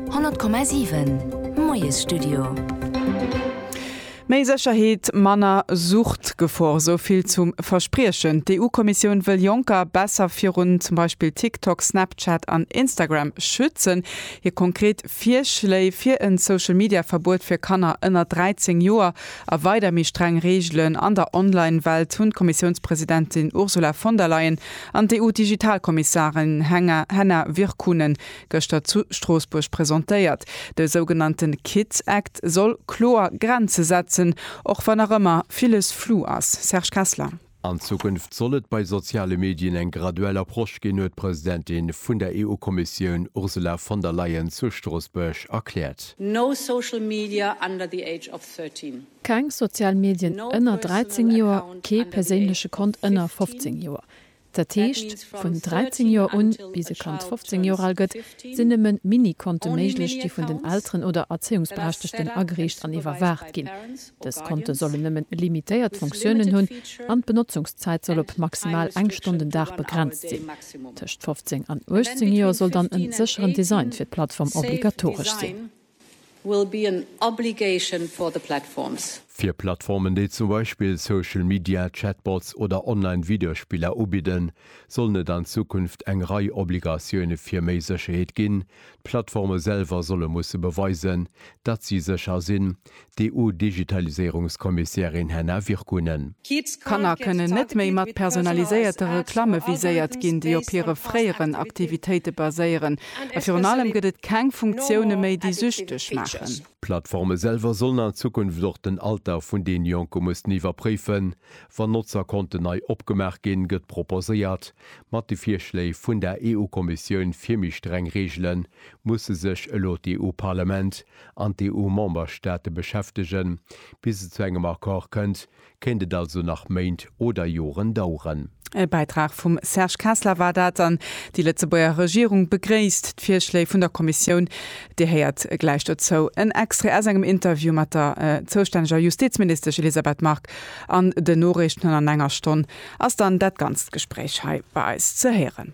100,7 Moiesstudio. Méi Sécherheet, manner Suchtgefor, esou vill zum Verspriechen. D'EU-Kommissioun wëll Jonker besser virun zum Beispill TikTok, Snapchat an Instagram schützen. Hir konkret Virschléi fir en Social-Media-Verbuet fir Kanner ënner 13 Joer a weider méi streng Reegelen an der Online-Welt hunn d'Kommissiounspresidentin Ursula von der Leyen An d'EU-Digitalkommissarin Henna Virkkunen gëschter zu Stroossbuerg presentéiert. De sougenannte Kids Act soll kloer Grenze setzen, och wann nach ëmmer villes flou ass. Serge Kessler. An Zukunft soll et bei soziale Medien eng graduell Approche ginn, huet d'Presidentin vun der EU-Kommissioun Ursula von der Leyen zu Stroossbuerg erkläert. No social media under the age of 13. Keng sozial Medien ënner 13 Joer, kee perséinleche Kont ënner 15 Joer. Dat heescht, vun 13 Joer un, bis e Kand 15 Joer al gëtt, sinn nëmme Mini-Konte méiglech, déi vun den Elteren oder Erzéiungsberechtegten ageriicht an iwwerwaacht ginn. Dës Konte sollen nëmmen limitéiert Funktiounen hunn an d'Benotzungszäit soll op maximal eng Stonn den Dag begrenzt sinn. Tëscht 15 an 18 Joer soll dann e sécheren Design fir d'Plattform obligatoresch sinn. will be an obligation for the platforms. Fir Plattformen, déi zum Beispill Social Media, Chatbots oder online Videospiller ubidden, sollen et an Zukunft eng Rei Obligatioune fir méi Sécherheet ginn. D'Plattforme selwer solle musse beweisen, datt si sécher sinn, d'EU-Digitaliséierungskommissärin Henna Virkkunen. Kanner kënnen net méi mat personaliséierte Reklamme viséiert ginn, déi op hire fréieren Aktivitéite baséieren. A virun allem gëtt et keng Funktioune méi, déi süchteg maachen. D'Plattforme selwer sollen an Zukunft och den Alter vun den Jonke mussen iwwerpréifen, wann Notzerkonten nei opgemaach ginn, gëtt proposéiert. Mat de Virschléi vun der EU-Kommissioun fir méi streng Reegelen musse sech elo d'EU-Parlament an d'EU-Memberstaate beschäftegen. Bis et zu engem Accord kënnt, kéint et also nach Méint oder Joren daueren. E Bäitrag vum Serge Kessler war dat an déi Lëtzebuerger Regierung begréisst d'Virschléi vun der Kommissioun. Dir héiert gläich dozou en Extrait aus engem Interview mat der zoustänneger Justizministesch Elisabeth Margue. An den Noriichten an an enger Stonn ass dann dat ganzt Gespréich hei bei eis ze héieren.